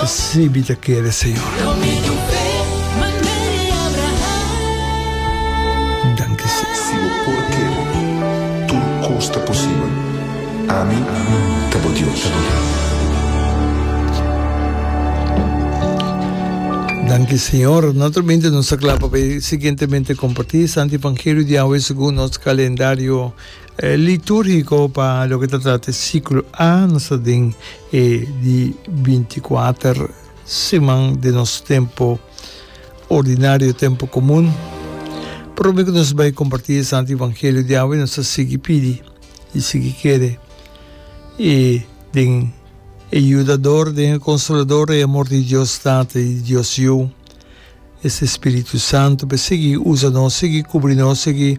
Sibi ta kere, Señor. Danki, Señor. Si bo por kere, tur kos ta posibel. Ami ta bo Dios. Danki, Señor. Naturalmente nos ta kla pa bay siguientemente comparti e Santo Evangelio di awe segun nos calendario Litúrgiko pa loke ta trata e siklo A, nos ta den e di bintikuater siman den nos tempu ordinario, tempu komun. Promé ku nos bai kompartí e Santu Evangelio di awe nos ta sigui pidi i sigui kere i den e Yudador, den e Konsolador, e amor di Dios Tata i di Dios Yu, esei Spiritu Santu, pa e sigui usa nos, sigui kubri nos, sigui.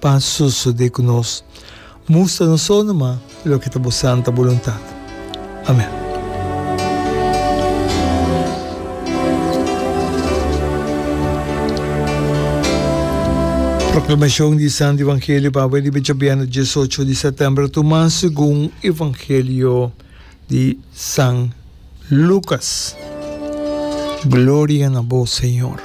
Pa sosode ku nos mustra nos sono ma loke ta bo santa boluntat. Amen. Proklamashon di Santu Evangelio pape di Becha Bièrnè Diesocho di Sètèmber tumá segun Evangelio. di San Lucas. Gloria na bo Señor.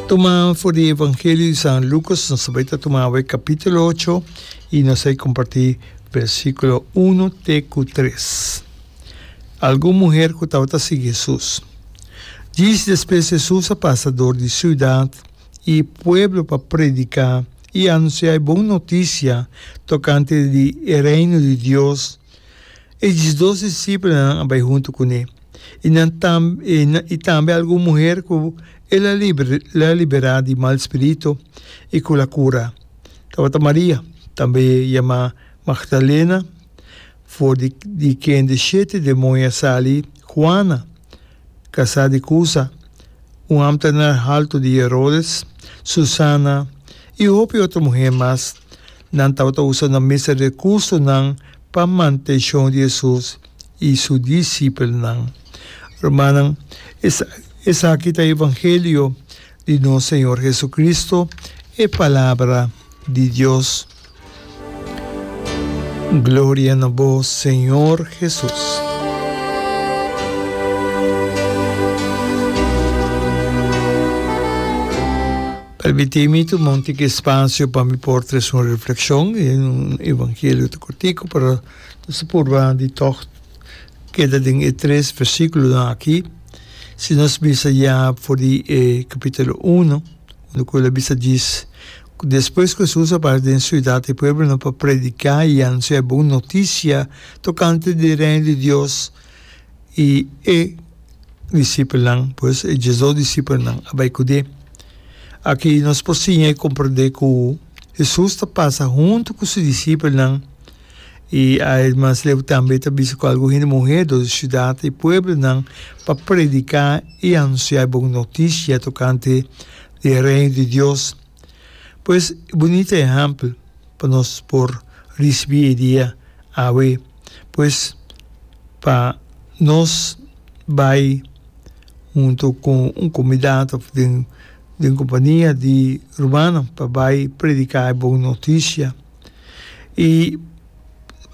Tuma for di Evangelio di San Lucas, nos a bai ta tuma awe capítulo ocho y nos a comparti versículo uno te cu tres. Algun muher cu tabata sigui Jesus. Djis despues Jesus a pasa door di ciudad y pueblo pa predica I anunciá e bon noticia tocante di e Reino di Dios. E diesdos discipelnan a bai hunto cu ne, i nan tam i tambe algun muher cu el a la liberá di mal spirito i cu el a cura. Tabata Maria, tambe yamá Magdalena, for di quien di shete demonia a sali, Juana, Casá di Cuza, un ambtenaar haltu di Herodes, Susana y hopi otro muheer mas, nan tabata usa nan mester recursonan pa mantencion di Jesús y su discipelnan. Rumannan, esaki ta Evangelio di nos Señor Jesucristo, e Palabra di Dios. Gloria na bo Señor Jesus. Permiti mi tuma un tiki espacio pa mi por tres un reflexion en un evangelio te cortico pero se purba di toch queda den e tres versículo dan aki si nos bisa ya for di e capítulo uno unda cu el a bisa djis Despues ku Hesus a bai den siudat i pueblonan pa prediká i anunsiá e bon notisia tokante di Reino di Dios, i e disipelnan, pues, e diesdos disipelnan, a bai kud'é. Aki nos por siña i komprendé ku Hesus ta pasa huntu ku su disipelnan, i a e mas leu tambe ta bisa ku algun hende muhé dor di siudat i pueblonan pa prediká i anunsiá e bon notisia tokante di e Reino di Dios. Pues e bunita ehèmpel pa nos por risibí e dia awe. Pues pa nos bai huntu ku un komunidad òf den den kompania di rumannan pa bai prediká e bon notisia. I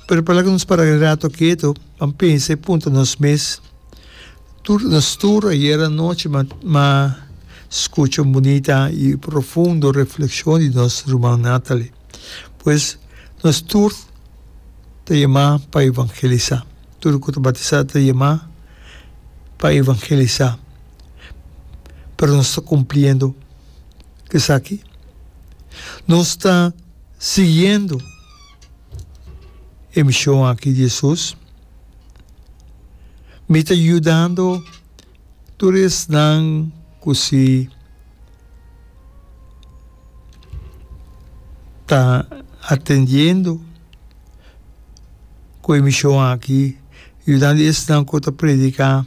prepará ku nos para e rato ketu, ban pensa i punta nos mes. Tur nos tur ayer anochi m'a skucha un bunita i profundo reflekshon di nos ruman Natalie. Pues, nos tur ta yamá pa evangelisá. Tur ku ta batisá ta yamá pa evangelisá. Pero nos ta kumpliendo esaki? Nos ta siguiendo e mishon aki di Hesus? Mi ta yudando tur esnan ku si ta atendiendo ku e mishon aki, yudando esnan ku ta prediká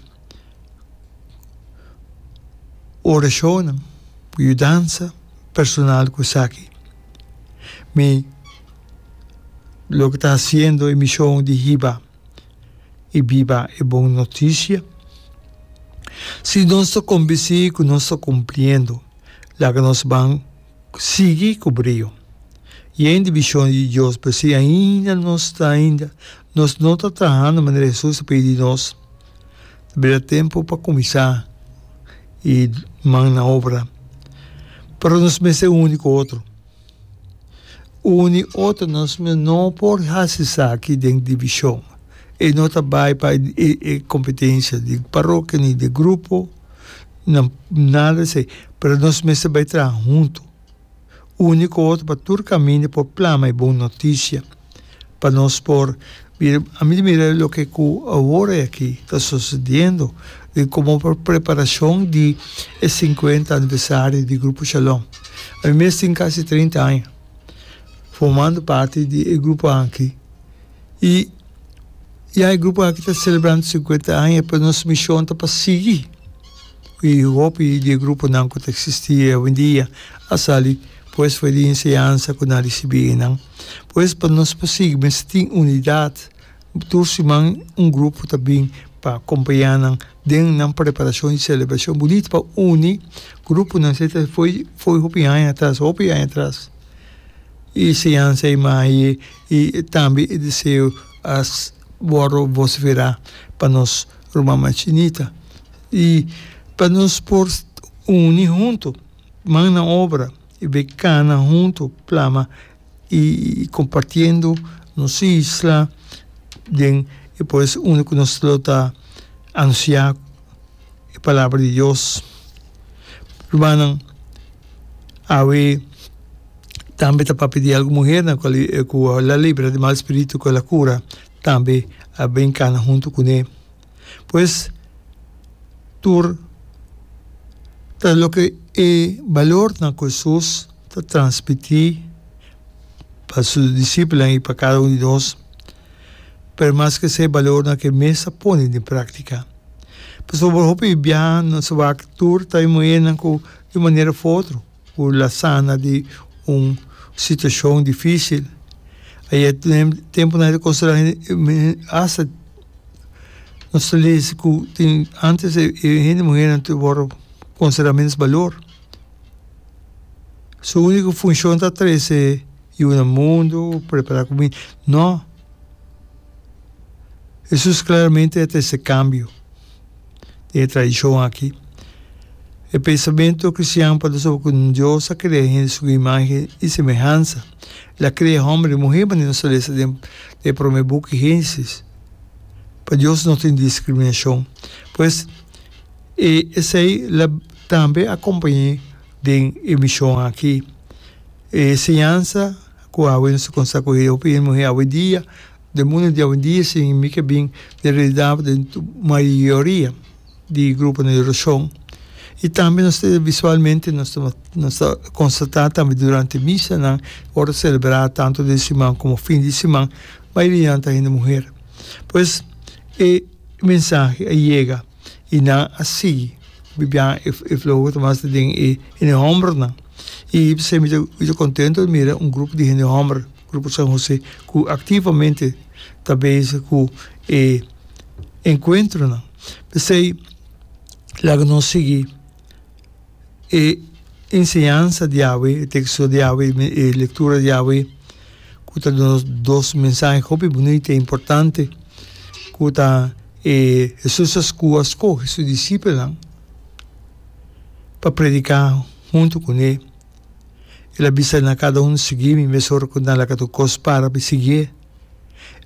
orashonnan, yudansa personal ku esaki. Mi. loke ta hasiendo e mishon di hiba i biba e bon notisia. Si nos ta kombensí ku nos ta kumpliendo, laga nos ban sigui ku brio. Yen di bishon di Dios, pero si ainda nos ta ainda nos no ta trahando manera Hesus a pidi di nos, tabata e tempu pa kuminsá e man na obra. Pero nos mester uni ku otro. Un di otro nos mi no por hasi esaki den divishon. E no ta bai pa e kompetensha di parokia ni di grupo, nan nada esei, pero nos mester bai traha huntu, uni ku otro pa tur kaminda por plama e bon notisia. pa nos por mira, a mi ta mira loke ku awor aki ta sosediendo, di komo por preparashon di e sinkuenta aniversario di Grupo Shalom. A mi mes tin kasi treinta aña formando parti di e grupo aki i ya e grupo aki ta selebrando sinkuenta aña pero nos mishon ta pa sigui i hopi di e gruponan ku ta eksistí awendia a sali pues for di enseñansa ku nan risibí einan. Pues pa nos por sigui mester tin unidat, tur siman un grupo ta bin pa acompaña nan den nan preparacion di celebracion bunito pa uni gruponan esei ta foi foi hopi aña atras hopi aña atras y enseñanza y maye y tambe e deseo a wordo vocifera pa nos rumannan chinita y pa nos por uni hunto man na obra. E be cana hunto plama y compartiendo nos isla den e poes uni cu nos lo ta anuncia e palabra di Dios. Rumannan awe tambe ta papia di algun muhernan cu a cu a la libra di mal spiritu cu a la cura tambe a ben cana hunto cune. Pues tur ta loke e balornan ku Hesus ta transmití pa su disipelnan i pa kada un di nos, pero mas ke esei balornan ke mes a pone den práktika. Pasobra hopi biaha nos a wak tur ta e muhernan ku di un manera of otro Cu la sana di un situacion dificil. Ai e tempo nan e ta considera hasta nos ta lezi cu tin antes e hende muher nan ta wordo considera minder balor. Su unico funcion ta trece yu na mundo, prepara cuminda. No! Jesus claramente a trece cambio. den e tradishon aki. E pensamentu kristian por ta sobre ku Dios a krea hende su imahe i semehansa. El a krea hòmber i muhé manera nos ta lesa den e promé buki Génesis. Pa Dios no tin diskriminashon. Pues, e esei la tambe akompañ'é den e mishon aki. E enseñansa ku awe nos ta konsa ku e hopi hende muhé awe dia, Den mundu di awendia sin mi ke bin den realidad den mayoria di gruponan di oracion y tambe nos ta visualmente nos ta nos ta constata tambe durante misanan ora ta celebra tanto den siman como fin di siman mayorianan ta hende muher pues e mensahe a yega y nan a sigui bibia e e flow ku ta mas den e hende hombernan y p'esei mi ta mi ta contento mira un grupo di hende homber. Grupo San José cu activamente ta bezig cu e encuentronan. P'esey laga nos sigui e enseñansa di awe, e texto di awe, e lectura di awe cu ta duna nos dos mensahe hopi bunita y importante cu ta e Jesus a scu a scoge su discipelnan pa predica hunto cu ne. El a bisa na kada un, Sigui mi, mesora ku nan laka tur kos para pa e sigié.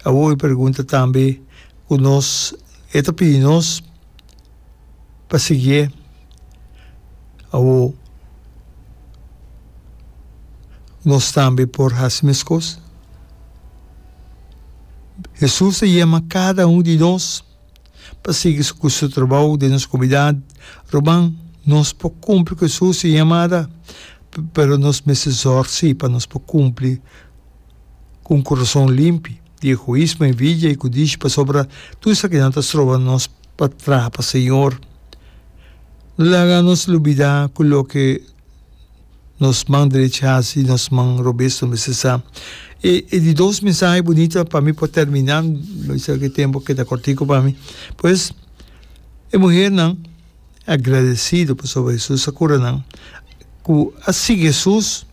Awor e pergunta tambe ku nos, E ta pidi nos pa sigié? Awor nos tambe por hasi meskos. Hesus ta yama kada un di nos. pa sigui su ku su trabou den nos komunidat. Ruman, nos por kumpli ku Hesus i yamada, pero nos mester zòrsi pa nos por kumpli ku un kurason limpi di egoismo, envidia i ku dichi pasobra tur sa kinan ta stroba nos pa traha pa Señor. No laga nos lubidá ku loke nos man derecha hasi y nos man robes lo mester sa. E e di dos mensahe bunito pa mi por termina, lo bisa ke tempo a keda cortico pa mi, pues e muhernan agradecido pasobra Jesus a cura nan, cu a sigui Jesus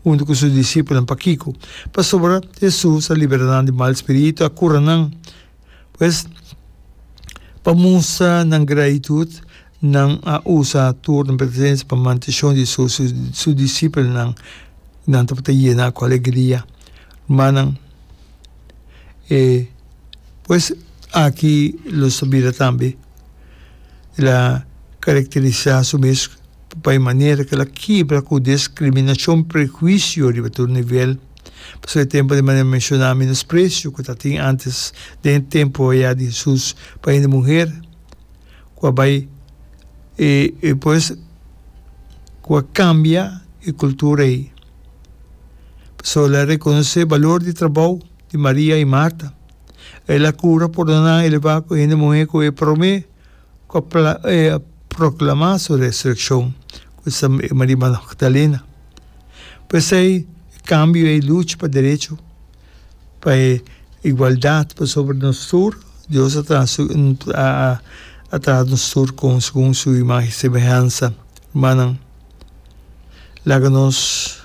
hunto cu su discipelnan, pakico? Pasobra Jesus a libera nan di mal spirito, a cura nan Pues, pa mustra nan gratitud, nan a usa tur nan presencia pa mante shon di su discipelnan y nan tabata yena cu alegria. Rumannan, e pues aki lo sa bira tambe, el a caracterisa su mes pa e manera cu el a kibra cu discriminacion, prehuicio riba tur nivel. Pasobra e tempu di manera menshoná menospresio ku ta tin ántes den e tempu ayá di Hesus pa hende muher ku a bai e e pues ku a kambia e kultura ei. Pasobra el a rekonosé e balor di trabou di Maria i Marta. El a kura, pordoná i lebá ku hende muhé ku e promé. Ku e a proklamá su resurekshon ku e sama e Maria Magdalena. Por esei e kambio ei lucha pa derecho, pa e igualdat pasobra nos tur, Dios a traha su a traha nos tur kon segun su imagen y semehansa, rumannan. Laga nos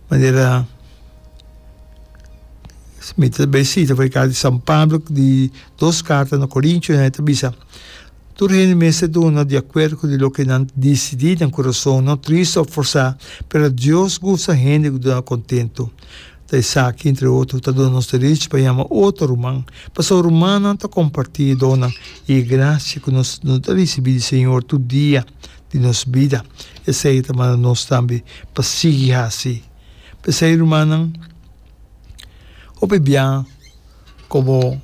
manera mita ta bai sita for e carta di San Pablo di dos carta na Corintios nan e ta bisa, Tur hende mester duna di acuerdo cu di loke nan dicidi den curason, no triste of forsa, pero Dios gusta hende cu duna contento. Ta esaki, entre otro, cu ta duna nos derechi pa yama otro ruman, pasobra rumannan ta comparti e donnan y e gracia cu nos ta ricibi di Señor tur dia di nos bida. Esei ta manda nos tambe pa sigui hasi. P'esei, rumannan, hopi bia komo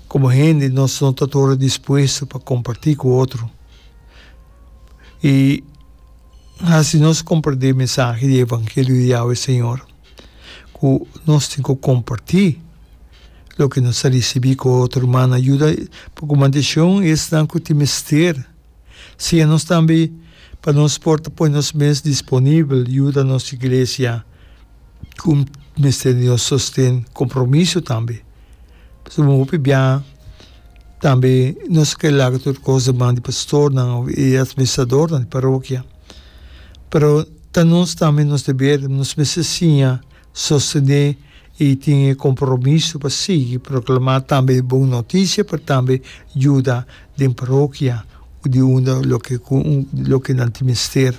komo hende nos no ta tur dispuesto pa kompartí ku otro i hasi nos komprendé mensahe di evangelio di Yahwe Señor ku nos tin ku kompartí loke nos a risibí ku otro rumannan. Yuda pa ku mandashon esnan ku tin mester. Siña nos tambe pa nos por ta pone nos mes disponibel yuda nos iglesia ku mester di nos sosten, kompromiso tambe. Pasobra mi hopi biaha tambe nos a kere laga tur kos den man di pastornan òf e atministradornan di parokia. Pero ta nos tambe nos deber, nos mester siña sostene i tin e kompromiso pa sigui proklamá tambe e bon notisia pa tambe yuda den parokia di unda loke ku loke nan tin mester.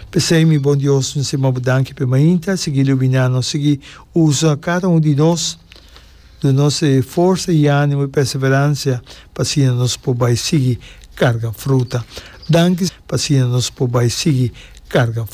P'esei, mi bon Dios, mi simb'A Bo danki p'e mainta, sigui luminá nos, sigui usa kada un di nos, duna nos e forsa i ánimo i perseveransia pa asina nos por bai sigui karga fruta. Danki, pa asina nos por bai sigui karga.